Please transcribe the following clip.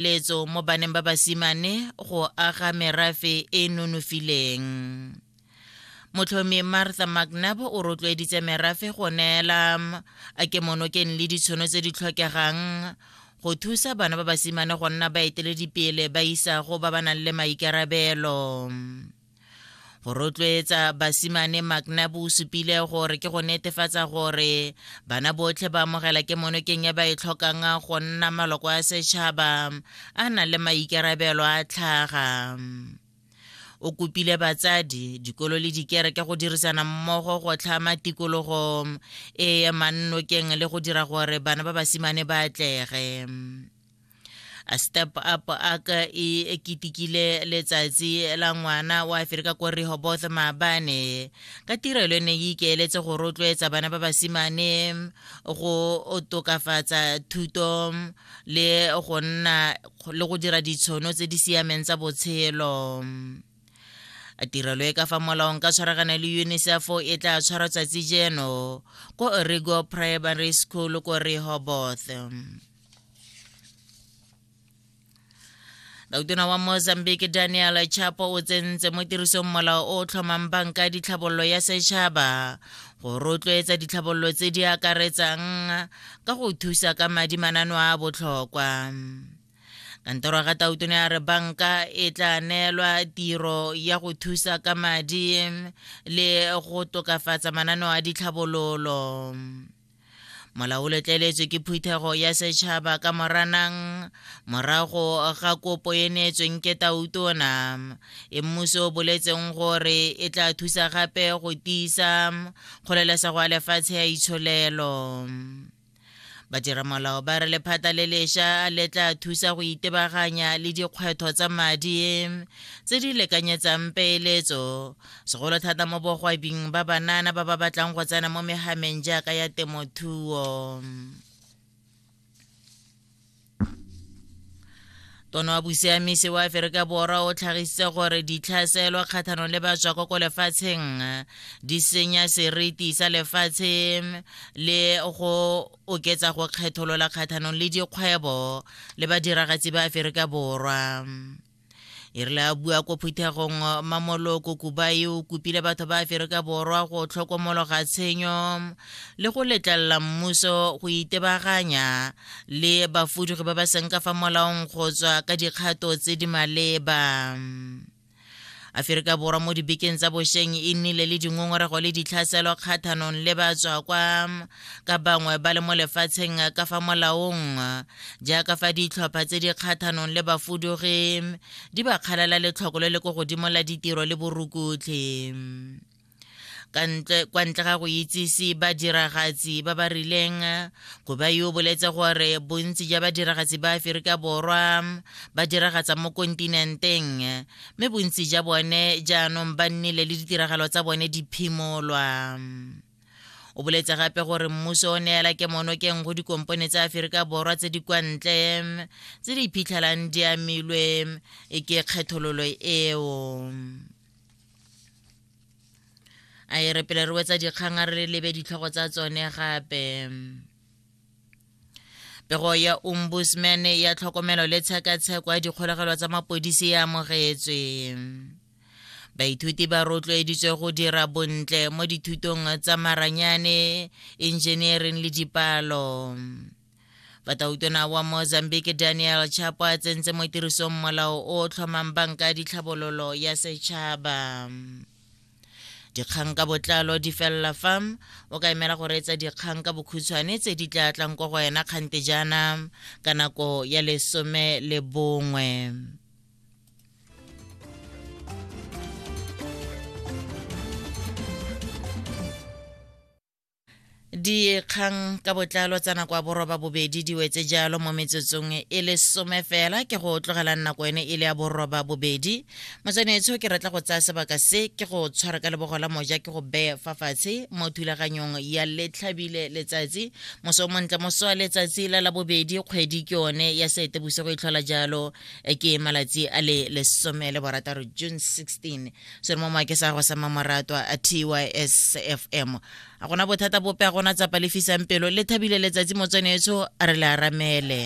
letso mo baneng ba basimane go aga merafe e nonofileng motlhomi martha mcnab o rotloeditse merafe go neela a kemonokeng le ditshono tse di tlhokegang go thusa bana ba basimane go nna baeteledipele ba isago ba ba nang le maikarabelo go rotloetsa basimane maknab o supile gore ke go netefatsa gore bana botlhe ba amogela ke monokeng ya ba e tlhokang go nna maloko a setšhaba a na le maikarabelo a tlhaga o kopile batsadi dikolo le dikereke go dirisana mmogo go tlhama tikologo e ya mannokeng le go dira gore bana ba basimane ba atlege a step up ak e ketekile letsatsi la ngwana wa aferika ko rehoboth maabane ka tirelo e ne e ikeeletse go rotloetsa bana ba basimane go tokafatsa thuto le go nna le go dira ditshono tse di siameng tsa botshelo a tirelo e ka fa molaong ka tshwaragana le unicef e tla tshwara tsatsi jeno ko origo primary school ko rehoboth dautona wa mozambique daniel chapo o tsentse mo tirisong molao o o tlhomang banka ditlhabololo ya setšhaba go rotloetsa ditlhabololo tse di akaretsang ka go thusa ka madi manano a botlhokwa kantoro ya gatautone ya re banka e tla neelwa tiro ya go thusa ka madi le go tokafatsa mananeo a ditlhabololo molao o letleletswe ke phuthego ya setšhaba ka moranang morago ga kopo e neetsweng ke tautona e mmuso o boletseng gore e tla thusa gape go tiisa kgolelesego ya lefatshe ya itsholelo badiramolao ba re lephata le lesha le tla thusa go itebaganya le dikgwetho tsa madi tse di lekanyetsang peeletso segolo thata mo bogwabing ba banana ba ba batlang go tsena mo megameng jaaka ya temothuo tono wa bosiamisi wa aferika borwa o tlhagisitse gore ditlhaselo kgatlhanong le batswako ko lefatsheng di senya seriti sa lefatshe le go oketsa go kgetholola kgatlhanong le dikgwebo le badiragatsi ba aferika borwa e rile a bua ko phuthegong mamolo kokubai o kopile batho ba aferika borwa go tlhokomologa tshenyo le go letlelela mmuso go itebaganya le bafudugi ba ba seng ka fa molaong go tswa ka dikgato tse di maleba aferika borwa mo dibekeng tsa bosheng e nnile le dingongorego le ditlhaselo kgathanong le batswa kwa ka bangwe ba le mo lefatsheng ka fa molaong jaaka fa ditlhopha tse di kgathanong le bafudugi di ba kgalala letlhoko le le ko godimo la ditiro le borukutlhi kwa ntle ga go itsise badiragatsi ba ba rileng koba yo boletse gore bontsi ja badiragatsi ba aferika borwa ba diragatsa mo kontinenteng mme bontsi ja bone jaanong ba nnile le ditiragalo tsa bone di phimolwa o boletse gape gore mmuso o neela ke monokeng go dikompone tsa aferika borwa tse di kwa ntle tse di iphitlhelang di amilwe e ke kgethololo eo a e re pele re wetsa dikgang a re lebe ditlhogo tsa tsone gape pego ya ombudsman ya tlhokomelo le tshekatsheko ya dikgolegelo tsa mapodisi e amogetswe Baithuti ba rotloeditswe go dira bontle mo dithutong tsa maranyane, engineering le dipalo. Batautona wa Mozambique Daniel Chapo a tsentse mo tirisong molao o o tlhomang banka ya ditlhabololo ya setšhaba. dikgang ka botlalo di felela fa o ka emela go reetsa dikgang ka bokhutshwane tse di tla tlang ko go wena kgante jaana ka nako ya lesome le bongwe dikgang ka botlalo tsa nako ya boroba bobedi di wetse jalo mo metsotsong e le some fela ke go tlogelang nako ene e le ya boroba bobedi motswanetsho ke retla go tsaya sebaka se ke go tshwara ka lebogo la moja ke go beye fa fatshe mo thulaganyong ya letlhabile letsatsi moso o montle moso wa letsatsi la la bobedi kgwedi ke one ya seetebosigo e tlhola jalo e ke malatsi a le lesome le borataro june 16 se re mo make sa go sa mamorato a tys fm a gona bothata bope a gona tsapa lefisang pelo le thabile letsatsi motsweneetsho a re le aramele